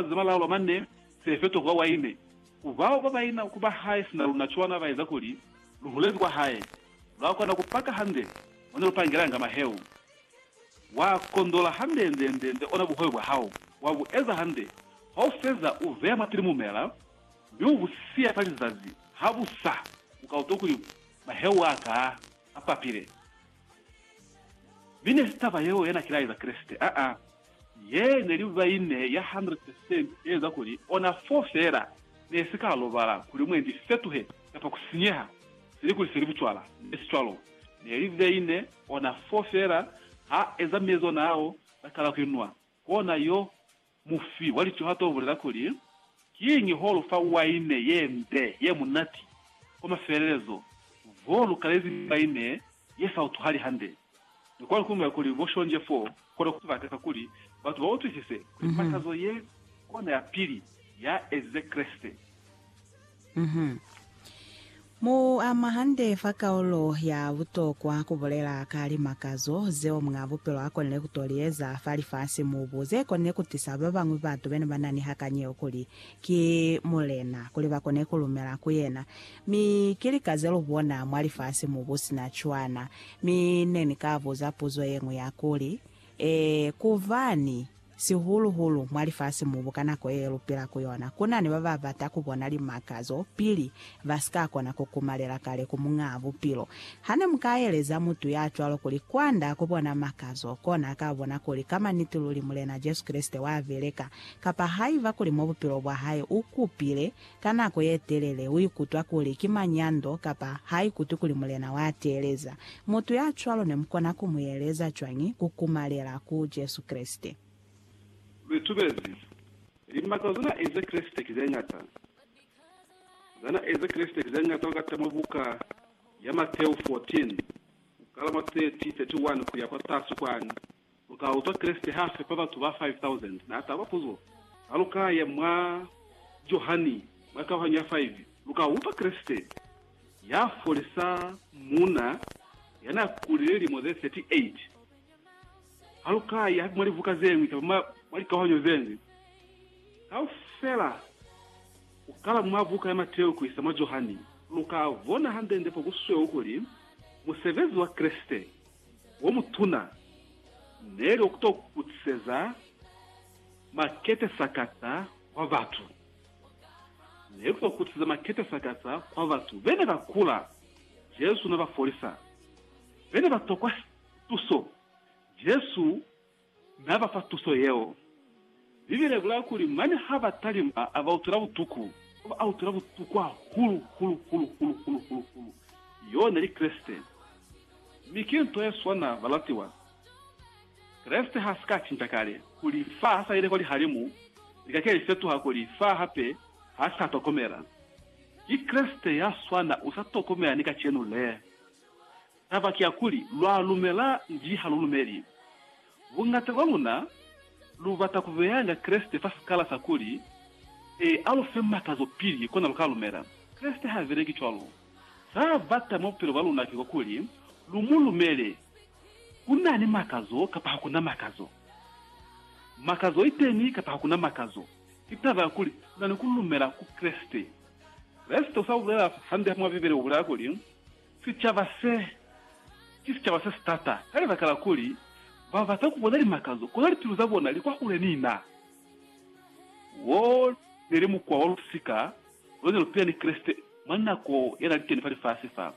Za malaula manne se feto kwa waine ku bao ba baina ku ba hae sina luna cwana ba eza kuli lu hulezi kwa hae. Lwa kona ku paka hande mo ne lu pangelanga maheu. Wa kondola hande nde nde nde ona buhoyo bwa hao, wa bu eza hande. Ha u feza, u veya mwapili mumela, mi u bu siya fa lizazi. Habusa, u ka utwa kuli maheu a ka a papile. Mi ne si taba yeo yana ki laeza Kreste, aa, ye ne li vaine ya 100 percent e eza kuli ona fo fela ne si ka lobala kuli mwendi si fetuhe kapa ku sinyeha, seli kuli se li bucwala. Nbe si cwalo. Ne li vaine ona fo fela ha eza mezo nao la kala ku inwa, kona yo Mufi wa licuhato ubulela kuli, Kiñi ho lu fa waine ye mbe ye munati? Kwa mafelelezo, vo lu kalezi waine ye sa utuhali hande. Ni kwani ku ñola kuli bo shonzhe fo kona ku bata ka kuli batu ba utwisise kuli matazo ye kona ya pili ya ezize Kreste? Mu ama hande fa kaulo ya butokwa ku bulela ka limakazo zeo muñ'a bupilo a konile ku to li eza fa lifasi-mubu ze konile ku tisa ba bañwi batu be ne ba na ni hakani yeo kuli ki Mulena, kuli ba kone ku lumela ku yena. Mi ki lika ze lu bona mwa lifasi-mubu sina cwana. Mi ne ni ka buza puzo ye ñwi ya kuli, Ee, kobani, sihulu-hulu mwa lifasi-mubu ka nako ye lu pila ku yona, ku na ni ba ba bata ku bona limakazo pili ba si ka kona ku kumalela kale ku Muñaa Bupilo. Ha ne mu ka eleza mutu ya cwalo kuli kwa nda ku bona makazo, kona a ka bona kuli ka maniti luli Mulena Jesu Kreste wa beleka, kapa haiba kuli mwa bupilo bwa hae u kupile Ka nako ye telele u ikutwa kuli ki manyando kapa ha ikutwi kuli Mulena wa teeleza. Mutu ya cwalo ne mu kona ku mu yeleza cwañi ku kumalela ku Jesu Kreste? Litubezi. Limakazo ze na ezi Kreste ki ze ñata. Za na ezi Kreste ki ze ñata ku kata mwa buka ya Mateu 14, ku kala mwa 30, 31 ku ya kwatasi kwani. Lu ka utwa Kreste ha fepa batu ba 5,000. Na taba puzo, Ha lu ka ya mwa Johani, mwa kauhanyo ya 5, lu ka utwa Kreste ya folisa muuna ya n'a kulile lilimo ze 38. Ha lu ka ya hape mwa libuka ze ñwi kamba mwa likauhanyo ze ñwi kaufela, ku kala mwa buka ya Mateo ku isa mwa Johani, lu ka bona hande-nde fo ku sweu kuli, musebezi wa Kreste. womutuna neli wa kuto kutiseza makete sakata kwa batu. Neli kuto kutiseza makete sakata kwa batu bene ba kula. Jesu na ba folisa bene ba tokwa tuso. Jesu Na ba fa tuso yeo. Bibele i bulaa kuli, Mane ha ba talimba, a ba utwela butuku. Ba ba utwela butuku hahulu, hulu, hulu, hulu, hulu, hulu, hulu, yo ne li Kreste. Mi ki nto ye swana, balatiwa. Kreste ha si ka cinca kale. Kuli fa ha sa ile kwa lihalimu, lika ke li fetuha kuli fa hape, ha sa tokomela. Ki Kreste ya swana, u sa tokomela ni kacenu le. Taba ki ya kuli, lwa lumela nji ha lu lumeli. Bungata bwa luna lu bata ku beyanga Kreste fa sikala sa kuli, E, a lu fe matazo pili, kona lu ka lumela. Kreste ha beleki cwalo. Za bata mwa bupilo bwa luna ki kwa kuli lu mu lumele, ku na ni matazo kapa ha ku na matazo. Matazo i teni kapa ha ku na matazo, ki taba ya kuli lu na ni ku lumela ku Kreste. Kreste u sa bulela hande mwa Bibele u bulela kuli, Sicaba se, ki sicaba se si tata ka libaka la kuli ba bata ku bona limakazo, kono lipilu za bona li kwahule ni na. Wo ne li mukwa wa lusika lo ne lu pila ni Kreste mwa nako ya na li teni fa lifasi fa.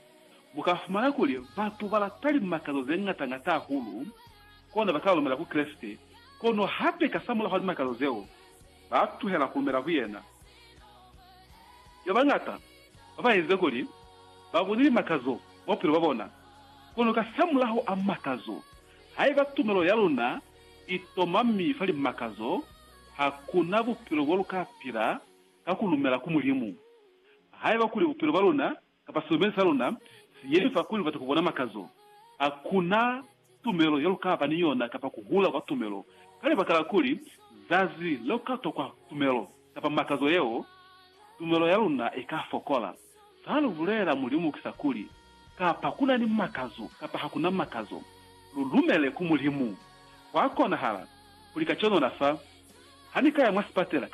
Mu ka fumana kuli batu ba lata limakazo ze ñata ñata hahulu, kona ba kala lumela ku Kreste, kono hape kasamulaho wa limakazo zeo, ba tuhela ku lumela ku yena. Ki ba bañata. ba ba inze kuli ba bone limakazo mwa bupilo bwa bona. Kono kasamulaho a makazo, haiba tumelo ya luna i tomami fa limakazo, ha ku na bupilo bo lu ka pila ka ku lumela ku Mulimu. Haiba kuli bupilo bwa luna kapa silumelwi sa luna si yemi fa kuli lu bata ku bona makazo, ha ku na tumelo yalukaba ni yona kapa kuhula kwa tumelo, ka libaka la kuli zazi leukatokwa tumelo kapa makazo yeo, tumelo yaluna ika fokola. Zalubulela Mulimu kisa kuli, kapa kuna ni makazo kapa hakuna makazo, lulumele ku Mulimu. Hwakonahala kuli kacenu nafa, hanikaya mwa sipatela,